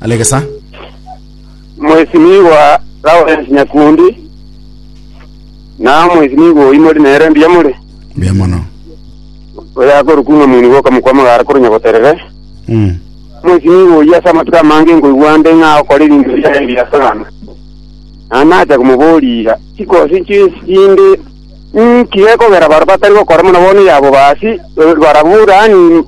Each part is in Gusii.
Alegesa. Mheshimiwa Lawrence Nyakundi na Mheshimiwa Oimori nere mbuya more Mbuya mono. oyakorokwa ng'a mwini goka mokwa magara koro nyagoterere Mm. Mheshimiwa oyi ase amatuko amange nkoigwa nde ng'a okora ebinto biaye ebiya sana na nacha komoboria chikosi chisinde nki gekogera baro batari gokora buna bono yabo basi barabwo rani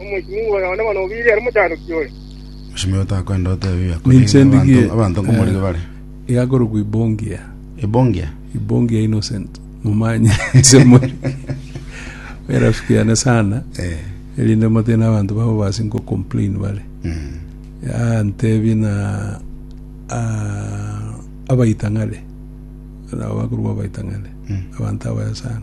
Omochimi oyo onde bono obiire are omochanoki oyo. Omochimi oyo takwenda otebi biakorire Ninche abanto, ndigie abanto nkomorigo eh, bare. igakorokwa ibongia Ebongia. ibongia innocent mumanye nse muri erafikiane sana Eh. erinde motine abanto babo basi nko complain bare Mm. Ah, ntebi na ah, abaitang'are nabo bakorwa abaitang'are Mm. abanto abaya sana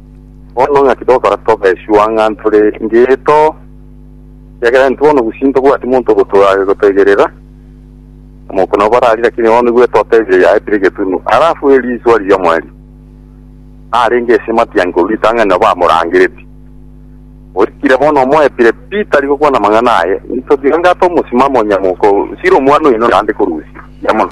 Bono ng'aki togokora tobe sure ng'a ntore ngeito? Ekiagera intwe bono gusii ntobwati monto ogotoa- ogotoigerera. Omouko nabo barari, lakini bono nigo etotebire yaetire egetunu. Alafu erio iswa riria omweri narenge ase matiangi korwa ritang'ani nabo amorangereti. Oikire bono omoepire pi tari gokwana amang'ana aye. Intwe tiga ng'ata omosimamo onye mouko sire omwana oino naende korusia. Buya mono.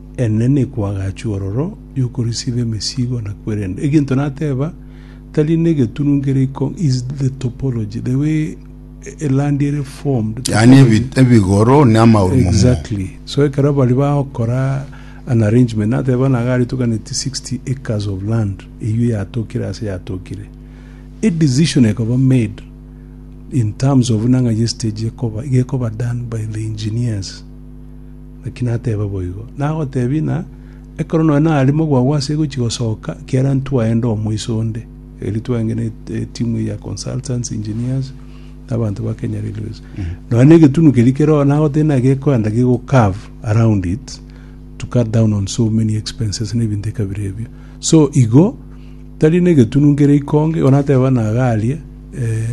Eena nikwo agachua ororo yokorisiba emesigo na kwerenda. Egento nateba, tari negetunu kere iko is the topology, the way a land ere formed, Yaani ebi- topology. ebigoro na amauru momo. Exactly. So ekero bari bagokora an arrangement nateba buna iga aretokaneti 60 acres of land eyio yatokire ase yatokire. A decision ekoba made in terms of buna ng'ai estage ekoba, iga ekoba done by the engineers. Naki nateba boigo, nagoteebia ng'a ekero nonya narimo gwagwa ase egochi gosoka, ekiagera ntwaenda omoiso onde, erio twenge ne etimu eye ya consultants, engineers, na abanto ba Kenya Railways. Nonya na egetunu keria keroo nagoteebia ng'a gekoenda gego curve around it to cut down on so many expenses na ebinto ekabere ebio. So igo, Tari negetunu nkere ikonge, igo natebe bana iga aria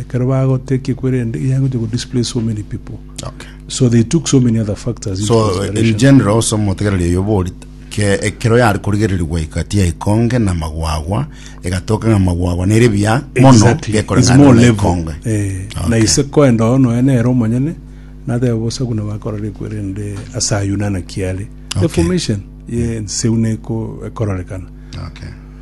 ekero bagotee ki ekwerende iga egochia go displace so many people. Okay. So they took so many other factors into So in consideration. general ase omotegereri oyo bori ke ekero yari korigereria gwaika tiya ikonge na magwagwa egatoka ng'a magwagwa nere biya mono Exactly. It's gekoreng'ana more na level. ikonge. Eh, na Okay. ise koenda oo noe nere omonyene natebe bosa buna bakorora ekwerende ase ayio nana kiare Okay. deformation ye enseu neko ekororekana Okay.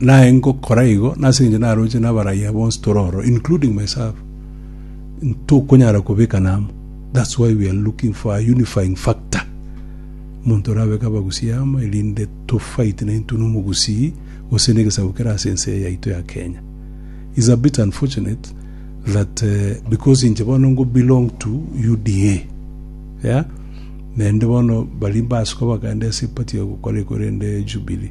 Naye ngokora igo, nase engencho naroche nabarayia bonsi tore ororo, including myself, ntokonyara kobekana amo. That's why we are looking for a unifying factor, omonto orabeke Abagusii amo erinde to fight na intwe na Omogusii gose na egesaku kere ase ense eye yaito ya Kenya. It's a bit unfortunate that because inche bono ngo belong to UDA, yeah, naende bono baria mbasuka bakaenda ase eparty ya gokora ekore ende Jubilee,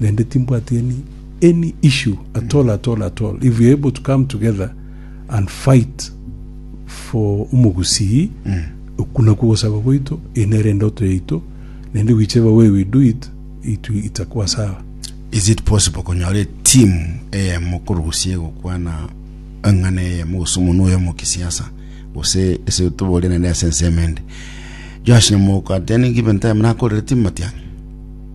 naende timbwati any any issue at all at all at all if we are able to come together and fight for omogusii oku nakwo gosaba gwaito eye nere endoto yaito naende whichever way we do it it will- itakuwa sawa Is it possible konyora etimu eyemo korusia egokwana eng'ana eyemo gose omonwa oyomo kisiasa gose ase toborie naende ase ensemo ende Joash Nyamoka at any given time nakorire timu matiang'i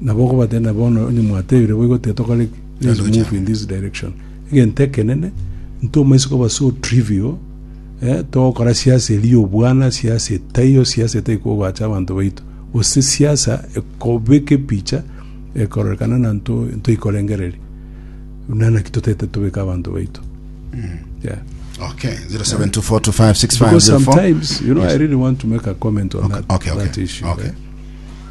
Nabo okobatebia, Bono onye mwatebire boigo, tiga tokore let's move in this direction. Egento ekenene, ntoma ase koba so trivial, eh, togokora siasa eria obwana, siasa etaiyo, siasa etai kogoacha abanto baito. Gose siasa ekobeka epicha ekororekana na nto ntoikorengereria. Buna naki totete tobeka abanto baito. Yeah. Okay, 0724256504. Because sometimes, you know, I really want to make a comment on Okay, that, okay, okay, that issue. okay.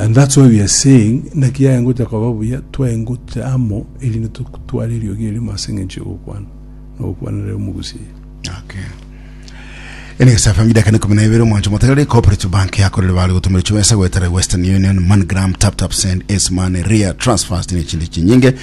And that's why we are saying naki yaya ngocha koba buya twaye ngocha amo erinde totware eriogi erimo ase eng'encho y'ogokwana na ogokwanera omogusi eye Okay. Enex FM idaka ne kumi na ibere omwancho motagarire cooperative bank yakorire bare gotumira chibesa gwetera Western Union, MoneyGram, TapTap Send, Ace Money, Ria, Transfast ne chindi chinyinge.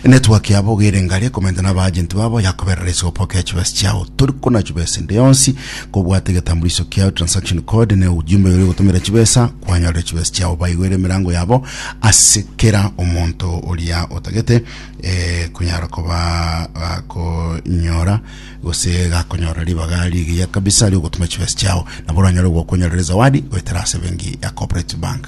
Emetwe ake abo gere ngare komenta nabaagenti babo, yakoberera ase gopoka echibesa chiao. Tori konachubwa ase ende yonsi, kobwate egetambuliso kiao, transaction code, ne ujumbe yoria ogotomera chibesa, kwanyorera chibesa chiao. Baigwere emerango yabo ase kera omonto oria otagete eh, konyara koba gakonyora gose gakonyorera ribaga rigiya kabisa riogotuma chibesa chiao. Nabo oranyore gokonyorera ezawadi goetera ase benki ya Cooperative Bank.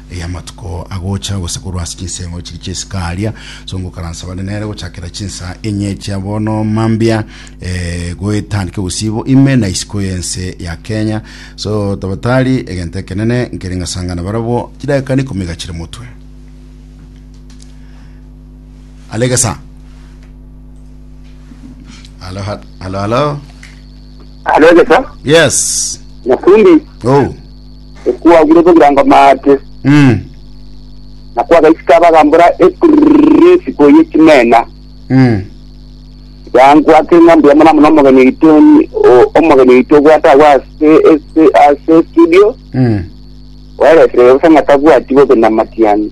Erio amatuko agocha gose korwa ase chinseng'o chiria chia isiko aria, songo okaransa bare nere gochakera chinsa enye chia bono mambia eh, goetandika obosibo ime na isiko y'ense ya Kenya. So tabatari egento ekenene nkere ngasangana barabwo chidakika na ikomi igachire motwe. Alegesa. Halo, ha- halo, halo. Alogesa, Yes. Nyakundi, Oh. Ekwagure bogirango maate, Mm. na kwagaisika abagambora ekuriri esiko ye chimena. Mm. Yangwate ng'a mbuya mono mono omogeni oito onye- o- omogeni oito obwate agwo ase ase ase studio, Mm. oereserere bosa ng'a tabwati bobe namatiani.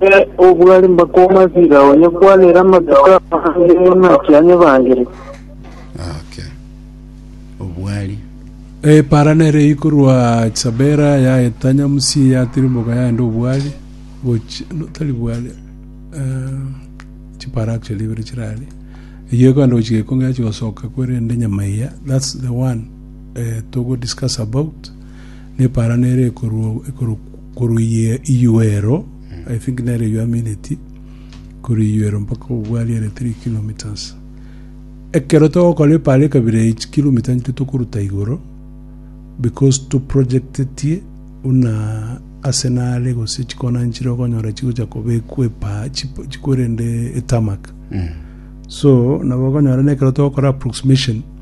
Ere obwari mbakoma asira onye kwanera amatuko amange naki anyebangire. Okay. Obwari. Epara nere ikorwa chabera ya etanya musi ya tirimboka yaenda obwari gochi no tari bwari eh, chipara actually ibere chirari eyo ekogenda gochi gekongera chigosoka kwerende nyama iya that's the one eh, togo discuss about nepara nere ekorwa ekorwa Korwa iyia iyuero, I think nere eyio amineti, korwa iyuero mpaka kogwa aria ere three kilometres. Ekero togokora epaara ekabira eye chikilomita nchio tokoruta igoro because toprojectetie buna ase nare gose chikona nchire okonyora chigocha kobekwa epaa chip- chikwerende etarmac. So nabo okonyora na ekero togokora approximation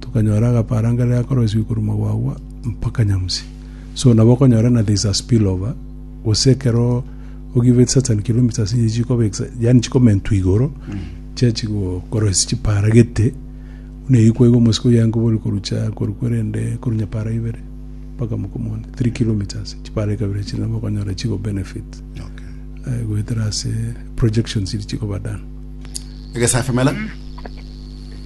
Tokanyora agaparanga rire akoroisiwe korwa magwagwa mpaka nyamusi. So nabo okonyora ng'a there is a spill over, gose ekero o give it certain kilometres inche chikoba ex- yaani chikomentwa igoro, chia chigokoroisia chipara gete, buna eyio kwaiga omosiko oye ankobwe ore korwa chia korwa kwerende korwa nyapara ibere mpaka mokomoni, three kilometres, chipara ekabere echio nabo okonyora chigo benefit Okay. eh, goetera ase projections chiria chikoba done. Egesafi mela.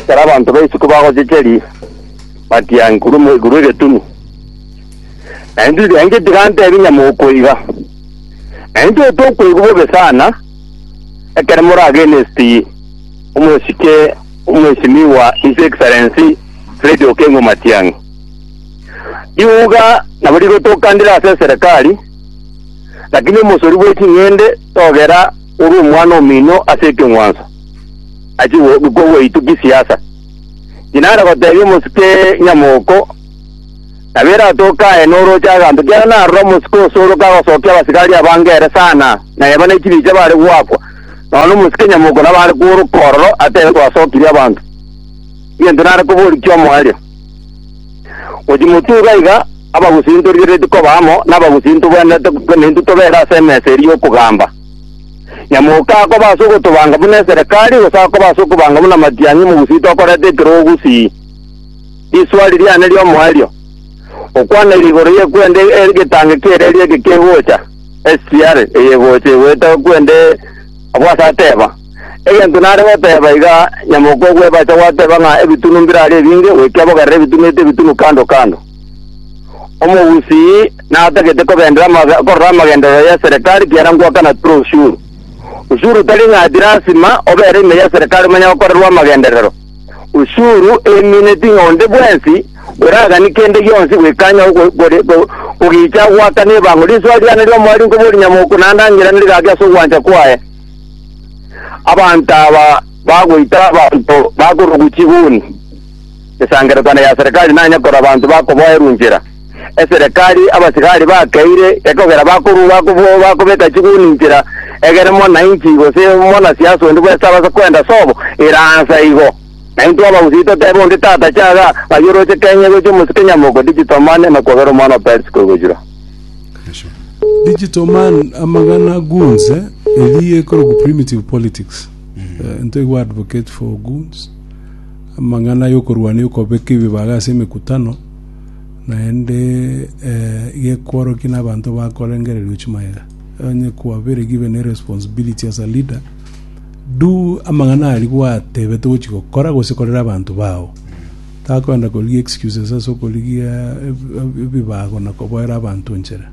Ekero abanto ba isiko bagochecheria, batianki, Ore omoika bw'egetunu. Na intwe tianki tigantebia nyamokoiga, na intwe tokoigwa bobe sana ekero more against omosike omwesimiwa His Excellency Fred Okengo Matiang'i. Riuga nabo rigotokandire ase eserekari, lakini omosori bwe ching'ende togera ore omwana omino ase ekeng'wanso. achie kogwaitukia siasa. Tinare gotebia omosike nyamoko, nabo eratoke aye noroche aganto, kiagera narora omosike osoroke agosokia abasigari abange ere sana, na eba ne chibicha bare goakwa, nonya omosike nyamoko nabo are kooroka ororo atebe twasokirie abanto. Egento nare koboria ki'omoerio, gochia motwe iga iga abagusinto rigeretie koba amo, na abagusinto bwenderete korwa naintwe tobere ase emesa eria y'okogamba. Nyamoka akoba ase ogotobanga buna eserekari, gose akoba ase okobanga buna matiang'i mogusii tokoreta ekero ogusii risuari riane ri'omoerio, okwana ere igoro ye kwenda egetangi ki'ereeri eke kegocha, STR, eye egocha egwete kwende abwo ase ateba. Egento nare goteba iga, Nyamoka ogw'ebacha gwateba ng'a ebitunu mbirare ebinge, goika bogerere ebitunu eto ebitunu kando kando. Omogusii natagete kobeendera amage- korora amagenderero y'eserekari, kiara ngoaka na tore osuru. Osuru tari ng'ati lasima obere ime y'eserekari omanye gokorerwa amagenderero. Osuru emineti ng'a onde bwensi oragani kende gionsi goikanya ogo- gore- go- kogicha agoaka nebango. Risoa riane ri'omoerio nkoba orinyamoko naende ang'irane rigaki ase ogwancha kwaye. Abanto aba bagoita abanto bakorokwa chiguni. esangererekano ya Serekari nanye korora abanto bakoboerwa inchera. Eserekari abasigari bakeire ekogera bakorua bakobo- bakobeka chiguni inchera, egere monainchi gose monasiasa onde bwensi tabasa kwenda sobo eransa igo. Na intwe abagusii totebe onde tata chaga, ng'ai oroche Kenya gochia omosike nyamoko digital money na kwabera omwana o Percy koigochura. Digital man amagana goons eh, eri ekorokwa primitive politics. Eh, into igo advocate for goons. Amang'ana y'okorwania okobeka ebibaga ase emekutano, naende gekworokia nabanto bakorengererio chimaega, onye kwabere given a responsibility as a leader, do amang'ana aria gwatebetwe gochia gokora gose korera abanto bao. Takoenda korigia excuses ase okorigia ebibago na koboera abanto enchera.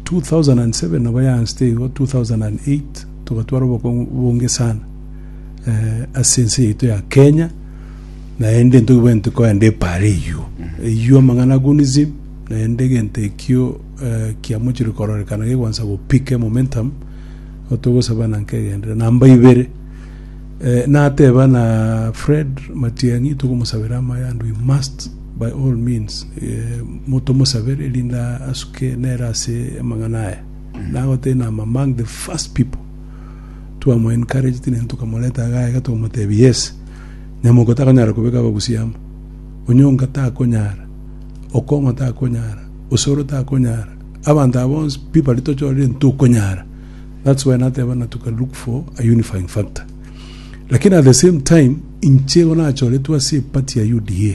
2007 nabo yaanseteigo, 2008 togatwara obokong'u bonge sana. ase ense yaito ya Kenya, naende ntobwenerete kogenda epaara eyuo. Eyuo amang'ana agunism, naende egento ekio eh, kiamochire kororekana gegoansa gopike momentum, igo togosaba na nkegenderero. Namba ibere, eh, nateba na Fred Matiang'i togomosabera amaya and we must by all means eh, mo- tomosabere erinde asuke nere ase amang'ana aya. Nagoteba I'm among the first people Twamoencouraged ne tokamoreta iga aiga tokamotebia, Yes, nyamoko takonyara kobeka abagusia amo. Onyonga takonyara. Okong'o takonyara. Osoro takonyara. Abanto aba bonsi, pi baria tochorire, ntokonyara. That's why nateba na toka look for a unifying factor. Lakini at the same time, inche igo nachoretwe ase epati ya UDA.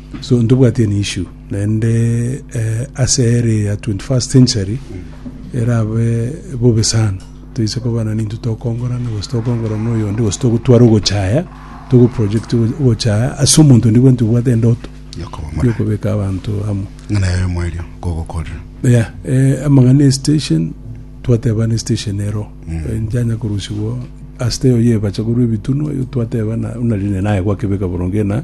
So ntobwati an issue naende eh, ase ere ya 21st century erabe bobe sana toise koba na ninto tokongorana gose tokongora na oyonde gose togotwara ogochaya togo project ogo- ogochaya ase omonto ndi bwenti obwate endoto Yokobomora. yokobeka abanto amo Ng'ana yayo mwerio kogokorera. yeah, eh, amang'ana ya station twateba ne station ero Eh, njanya korusigwa asite oyo yebacha korwa ebitunu oyo twateba na unarine naye gwakebeka boronge na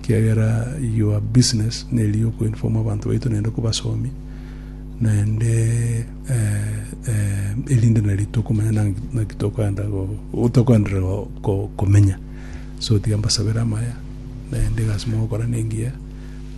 ekiagera your business neri oku inform abanto baito naende kobasomi naende eh, eh, erinde nari tokomanya nang- naki tokoenda go- tokoenderera go- ko- komenya so tiga mbasabere amaya naende egasi mogokora nengiya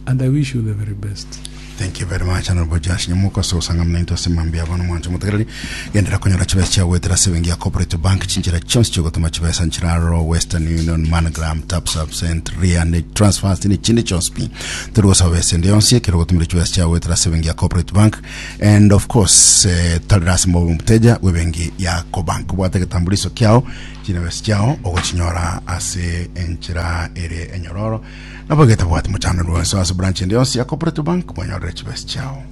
and i wish you the very best Thank you very much Honourable Josh Nyamuka ase ogosang'amina intwe ase mambia abo nomwancho omotegereri. Genderera konyora chibesa chiao goetera ase ebenki ya Cooperative Bank. Chinchera chionsi chi'ogotoma chibesa nchire aroro, Western Union, MoneyGram, TapSap, Send, Ria, Net Transfers ne chinde chionsi pi. Tori gosaba besa ende yonsi ekero ogotumire chibesa chiao goetera ase ebenki ya Cooperative Bank and of course eh, tarera ase mobe omoteja bw'ebenki ya Cobank. Bwata egetambuliso kiao, chinebesa chiao ogochinyora ase enchera ere enyororo. Nabo getabwati mochando rwenso ase branch ende yonsi ya Cooperative Bank mwanyorere chibesa chiao.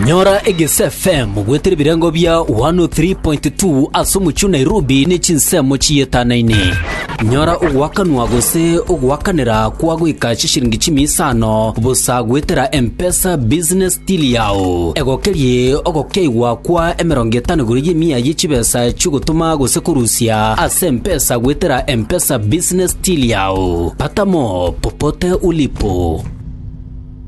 Nyora Egese FM bwete ebirengo bia 103.2 ase omochie o Nairobi ne chinsemo chiyetanaine. Nyora ogoakanwa gose ogoakanera kwa goika chishiringi chimia isano bosa goetera M-Pesa Business Tiri yao egokerie ogokeigwa kwa emerongo etano igoro y'emia ye chibesa chi'ogotoma gose korusia ase empesa goetera M-Pesa Business Till yao. Pata mo popote ulipo.